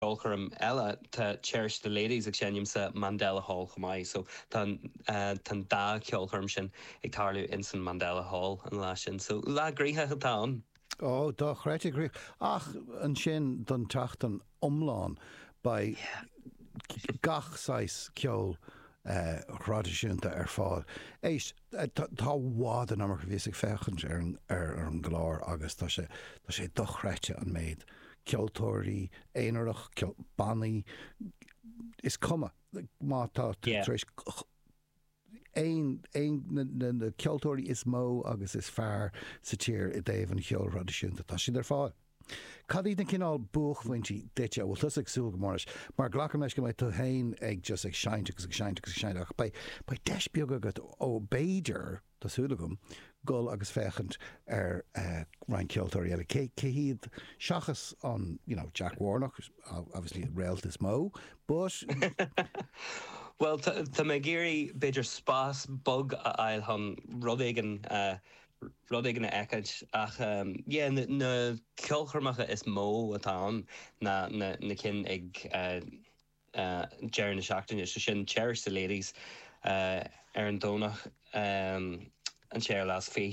ceolchoirm eile. Tá Cherish the Ladies ag seinm sa Mandela Hall chomh maith so tá tá an dá cheolchoirm sin ag tarlú ins an Mandela Hall an lá sin. So lá gnóthach atá ann. Ó, dochreidte gnóthach. Ach ansin don tseachtain iomlán beidh gach saghas ceoil thraidisiúnta ar fáil. Éist. Tá i bhfad an iomarca bhíos ag féachaint ar an gclár agus tá sé tá sé dochreidte an méid ceoltóirí aonarach, bannaí, is cuma má tá tú tar éis aon aon na na ceoltóirí is mó agus is fearr sa tír i dtaobh an cheoil thraidisiúnta, tá siad ar fáil. Cad iad na cineál buaicphointí duitse a bhfuil tusa ag súil go mór leis? Mar glacaim leis go mbeidh tú féin ag just ag seinnt agus ag seinnt agus ag seinnt ach beidh deis beag agat ó b'fhéidir, tá súil agam, dul agus féachaint ar roinnt ceoltóirí eile. Cé hiad seachas an you know Jack Warnock, obviously an réalt is mó but. Bhuel tá mé ag iarraidh b'fhéidir spás bog a fháil chun rud éigin a rud éigin a fheiceáilt ach yeah na ceolchoirmeacha is mó atá ann ná na cinn ag deireadh na seachtaine so sin Cherish the Ladies ar an Domhnach an 26ú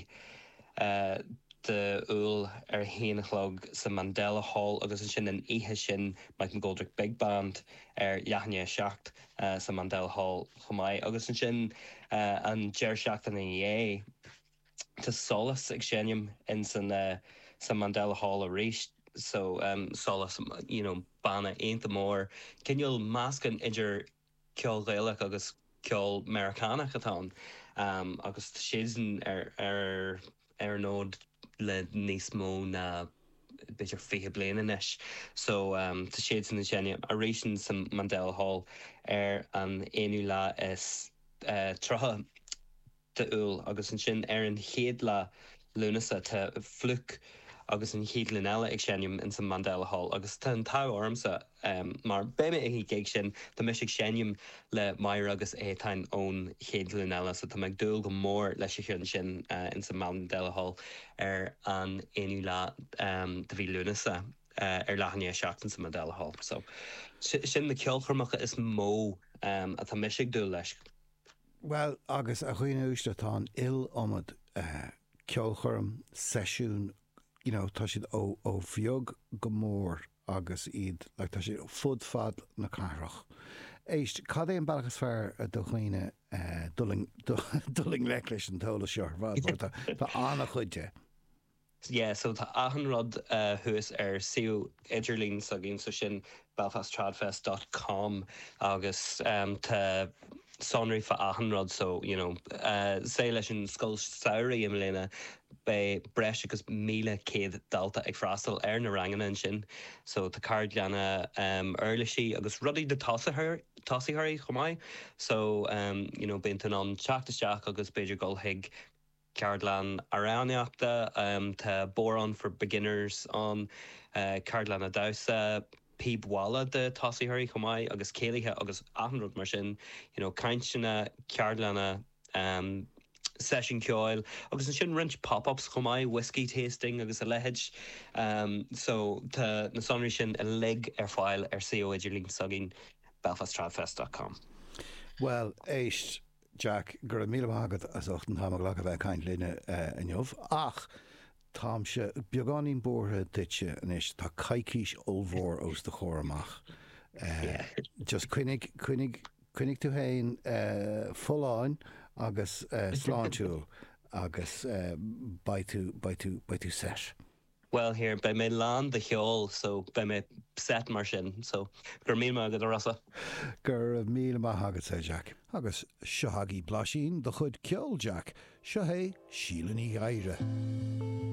Iúil ar a haon a chlog sa Mandela Hall agus ansin an oíche sin Mike McGoldrick Big Band ar leath i ndiaidh a seacht eh, sa Mandela Hall chomh maith agus ansin eh, an deireadh seachtaine ina dhiaidh tá Solas ag seinm in san eh, sa Mandela Hall arís so em, Solas you know banna iontach mór, cineál meascán idir ceol Gaelach agus ceol Meiriceánach atá ann em, agus tá siadsan ar, ar. ar an fhód le níos mó ná b'fhéidir 20 bliain anois. So tá siadsan ag seinm arís in san Mandela Hall ar an aonú lá is tríocha d'Iúil agus ansin ar an chéad lá Lúnasa tá Flook agus An Chéad Ghlúin Eile ag seinm in san Mandela Hall agus tá an t-ádh ormsa em mar beidh mé ag an ghig sin tá mise ag seinm le Máire agus Étáin ón Chéad Ghlúin Eile so tá mé ag dúil go mór leis an cheann sin eh in san Mandela Hall ar an aonú lá em de mhí Lúnasa eh ar leath i ndiaidh a seacht in san Mandela Hall so si- sin na ceolchoirmeacha is mó em atá mise ag dúil leis. Bhuel agus a dhaoine uaisle tá an iliomad eh ceolchoirm, seisiún, you know tá siad ó ó bheag go mór agus iad like tá siad fud fad na cathrach. Éist, cad é an bealach is fearr do dhaoine dul i dul i ngleic leis an t-eolas seo ar fad mar tá tá an-chuid de? Yeah so tá achan rud thuas ar suíomh idirlín s'againn so sin belfasttradfest dot com agus tá sonraí fá achan rud so you know sa leis an scoil samhraidh i mbliana beidh breis agus míle céad dalta ag freastal ar na ranganna ansin so tá ceardlanna um uirlisí agus rudaí do thosaitheoirí chomh maith so um you know bíonn tú in ann teacht isteach agus b'fhéidir dul chuig Ceardlann amhránaíochta, tá Bodhrán for Beginners ann, ceardlanna damhsa, píob mhála do thosaitheoirí chomh maith agus céilithe agus achan rud mar sin, you know, cainteanna, ceardlanna, seisiúin ceoil agus ansin roinnt pop-ups chomh maith, whiskey tasting agus a leithéid. So, tá na sonraí sin uilig ar fáil ar suíomh idirlín s'againn, belfasttradfest dot com. Bhuel, éist, Jack, go raibh míle maith agat as ucht an t-am a ghlacadh a bheith ag caint linn inniu. Ach táimse beagáinín buartha duitse anois, tá coicís ollmhór os do chomhair amach. Just coinnigh, coinnigh, coinnigh tú féin folláin agus sláintiúil agus beidh tú, beidh tú, beidh tú sásta. Bhuel yeah, beidh mé lán de cheol so beidh mé sásta mar sin. So, go raibh míle maith agat, a Rossa. Go raibh míle maith agatsa, a Jack. Agus seo agaibh blaisín de chuid ceoil, Jack. Seo hé Síle Ní Ghadhra.